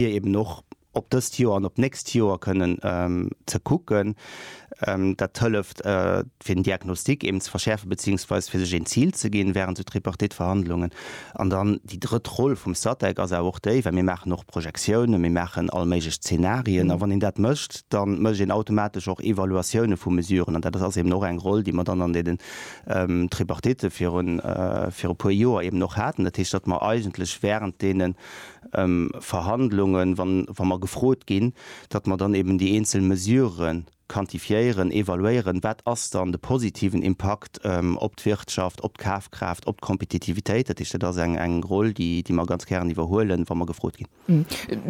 fir eben och op dëst Joer an op d'nächst Joer kënnen ze kucken. Dat hëlleft, fir den Diagnostik eben ze verschäerfen, beziehungsweise fir sech een Zil ze ginn während sou Tripartite-Verhandlungen. An dann déi drëtt Roll vum Statec ass awer och déi, well mir maachen och Projektiounen, mir maachen all méiglech Zenarien. A wann een dat mécht, da mécht een automatesch och Evaluatioune vu Mesuren. An dat ass eben och eng Roll, déi mer dann an deenen Tripartite virun e puer Joer eben och haten. Dat heescht, datt mer eigentlech während deenen Verhandlungen, wa mer gefrot ginn, datt mer dann eben déi eenzel Mesurë quantifiéieren, evaluéieren, wat ass dann de positiven Impakt op d'Wirtschaft, op d'Kafkraaft, op d'Kompetitivitéit. Dat heescht, dat ass eng Roll, déi mer ganz gären iwwerhuelen, wa mer gefrot ginn.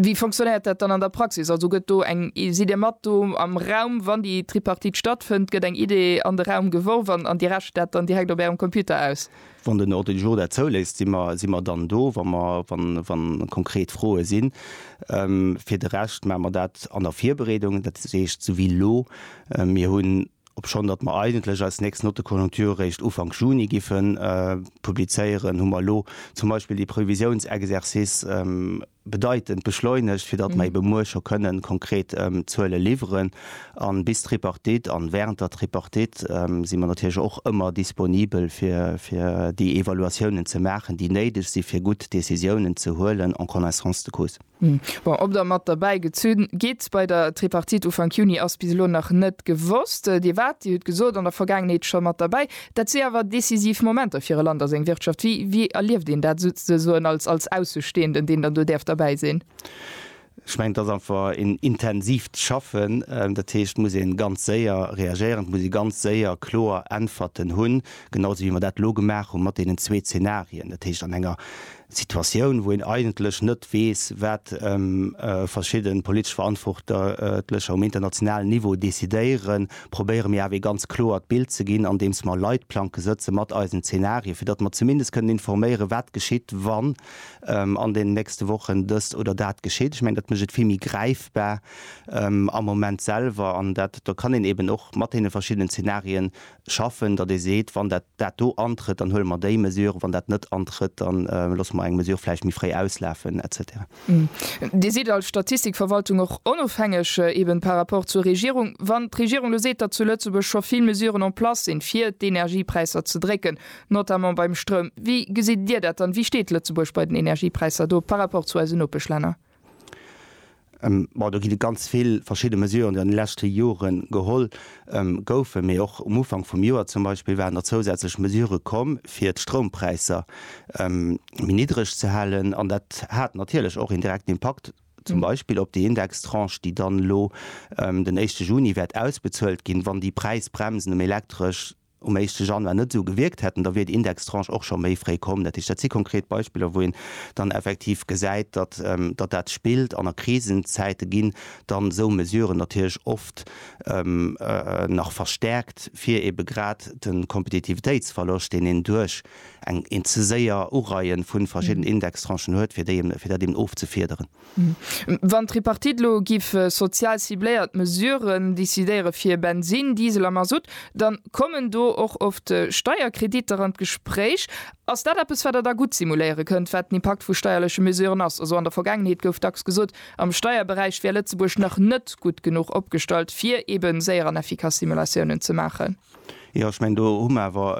Wéi fonctionnéiert dat dann an der Praxis? Also gëtt do eng, sidd Dir mat do am Raum, wann déi Tripartite stattfënnt? Gëtt eng Idee an de Raum geworf an Dir rechent dat dann direkt op Ärem Computer aus? Wann den Ordre du jour dat zouléisst, si mer dann do, wa konkret Froe sinn. Fir de Rescht maache mer dat an der Virbereedung, dat heescht esou wéi elo. Mir hunn, obschonn datt mer eigentlech eis nächst Note de conjoncture eréischt Ufank Juni giffe publizéieren, hu mer elo zum Beispill dee Previsiounsexercice, bedeitend beschleunegt, fir datt mer ebe muer scho kënnen konkret Zuele liwweren. A bis d'Tripartite an während der Tripartite si mer natierlech och ëmmer disponibel, fir déi Evaluatiounen ze maachen, déi néideg si fir gutt Décisiounen ze huelen en connaissance de cause. Bon, ob Der mat derbäi gezunn gitt bei der Tripartite Ufank Juni, ass bis elo nach net gewosst. Dir waart, Dir hutt gesot, an der Vergaangenheet scho mat derbäi. Dat si awer decisiv Momenter fir e Land a seng Wirtschaft. Wéi, wéi erlieft een dat souzesoen als, als Aussestehenden, deen dann do däerf derbäi sinn? Ech mengen, et ass einfach een intensiivt Schaffen. Dat heescht, et muss ee ganz séier reagéieren, et muss ee ganz séier kloer Äntwerten hunn, genau esou wéi mer dat elo gemaach hu mat deenen zwee Zenarien. Dat heescht, an enger Situatioun, wou een eigentlech net weess, wat verschidde politesch Verantwortlecher um internationalen Niveau decidéieren, probéiere mir awer ee ganz kloert Bild ze ginn, andeems mer Leitplanke sëtze mat eisen Zenarien, fir datt mer zumindest kënnen informéieren, wat geschitt, wann an deenen nächste Wochen dëst oder dat geschitt. Ech mengen, dat mécht et vill méi gräifbar am Moment selwer. An dat, do kann een eeben och mat deene verschiddenen Zenarien schaffen, datt ee seet, wann dat dat do antrëtt, dann huele mer déi Mesure, wann dat net antrëtt, dann loosse mer eng Mesure vläicht méi fréi auslafen et cetera. Dir sidd als Statistikverwaltung och onofhängeg eben par rapport zur Regierung. Wann d'Regierung elo seet, datt zu Lëtzebuerg scho vill Mesuren en place sinn, fir d'Energiepräisser ze drécken, notamment beim Stroum, wéi gesitt Dir dat dann? Wéi steet Lëtzebuerg bei den Energiepräisser do par rapport zu eisen Nopeschlänner? Bon, do ginn et ganz vill verschidde Mesuren, déi an de leschte Jore geholl goufen, mee och um Ufank vum Joer zum Beispill waren der zousätzlech Mesurë komm, fir d'Stroumpräisser méi niddreg ze halen. An dat hat natierlech och een direkten Impakt zum Beispill op déi Indextranche, déi dann elo den éischte Juni wäert ausbezuelt ginn, wann déi Präisbremsen um Elektresch um éischte Januar net esou gewierkt hätten, da wier déi Indextranche och scho méi fréi komm. Dat heescht, dat si konkret Beispiller, wou een dann effektiv gesäit, datt dat spillt. An a Krisenzäite ginn dann esou Mesuren natierlech oft nach verstärkt, fir eebe grad de Kompetitivitéitsverloscht, deen een duerch eng, een ze séier Ureien vu verschidden Indextranchen huet, fir déi, fir dat eeben ofzefiederen. Wann d'Tripartite elo giff sozial cibléiert Mesuren decidéiere fir Bensin, Diesel a Masutt, dann kommen do och oft Steierkrediter an d'Gespréich. Ass dat eppes wat der da gutt simuléiere kënnt, wat den Impakt vu steierleche Mesuren ass? Also an der Vergaangenheet gouf dacks gesot, am Steierberäich wär Lëtzebuerg nach net gutt genuch opgestallt fir eben séier an efficace Simulatiounen ze maachen. Jo, ech mengen, do hu mer awer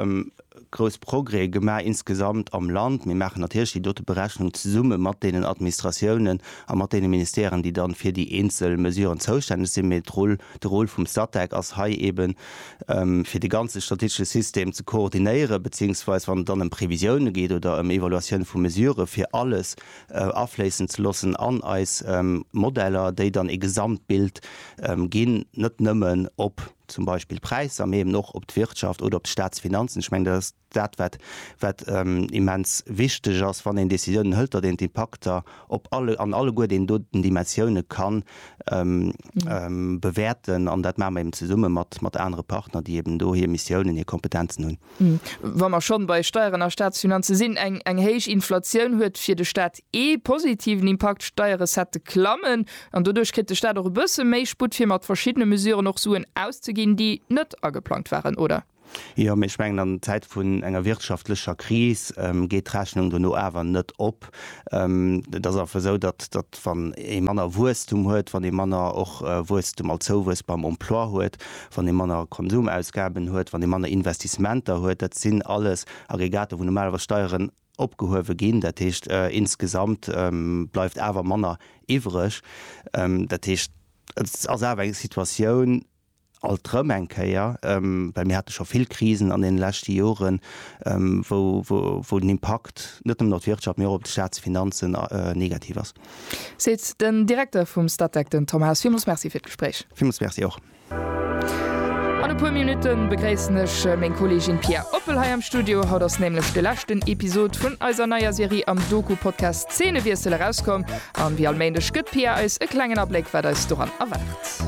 grouss Progrèse gemaach insgesamt am Land. Mir maachen natierlech déi dote Berechnung zesumme mat deenen Administratiounen a mat deene Ministèren, déi dann fir déi eenzel Mesuren zoustänneg sinn. Mee d'Roll, de Rôle vum Statec ass hei eeben, fir de ganze statistesche System ze koordinéieren, beziehungsweise wann et dann ëm Previsiounen geet oder ëm Evaluatiounen vu Mesuren, fir alles afléissen ze loossen an eis Modeller, déi dann ee Gesamtbild ginn, net nëmmen op zum Beispill d'Präisser, mee eben och op d'Wirtschaft oder op d'Staatsfinanzen. Ech mengen, dat ass dat, wat, wat immens wichteg ass, wann een Décisiounen hëlt, datt een d'Impakter op alle, an alleguer deenen doten Dimensioune ka bewäerten. An dat maache mer eben zesumme mat, mat anere Partner, déi eben do hir Missiounen, hir Kompetenzen hunn. Wa mer schonn bei Steieren a Staatsfinanze sinn, Eng héich Inflatioun huet fir de Staat ee positiven Impakt, D'Steierrecettë klammen an doduerch kritt de Staat och e bësse méi Sputt fir mat verschiddene Mesuren och Suen auszeginn, déi net ageplangt waren, oder? Jo, mee ech mengen an Zäite vun enger wirtschaftlecher Kris geet d'Rechnung dono awer net op. Et ass einfach esou, datt wann ee manner Wuesstum huet, wann ee manner och Wuesstum als Zouwuess beim Emploi huet, wann ee manner Konsumausgaben huet, wann ee manner Investissementer huet, dat sinn alles Aggregater, wou normalerweis Steieren opgehuewe ginn. Dat heescht, insgesamt bleift awer manner iwwreg. Dat heescht, et ass awer eng Situatioun, alt erëm eng Kéier, well mir hate scho vill Krisen an deene leschte Joren, wou den Impakt net nëmmen op d'Wirtschaft, mee och op de Statsfinanzen negativ ass. Seet den Direkter vum Statec, den Tom Haas. Villmools Merci fir d'Gespréich. Villmools Merci och. An e puer Minutte begréissen ech meng Kolleegin Pia Oppel hei am Studio. Haut ass nämlech de leschten Episod vun eiser neier Serie am Doku-Podcast Szenewiessel erauskomm. An wéi all Méindeg gëtt d'Pia eis e klengen Abléck, wat eis doran erwaart.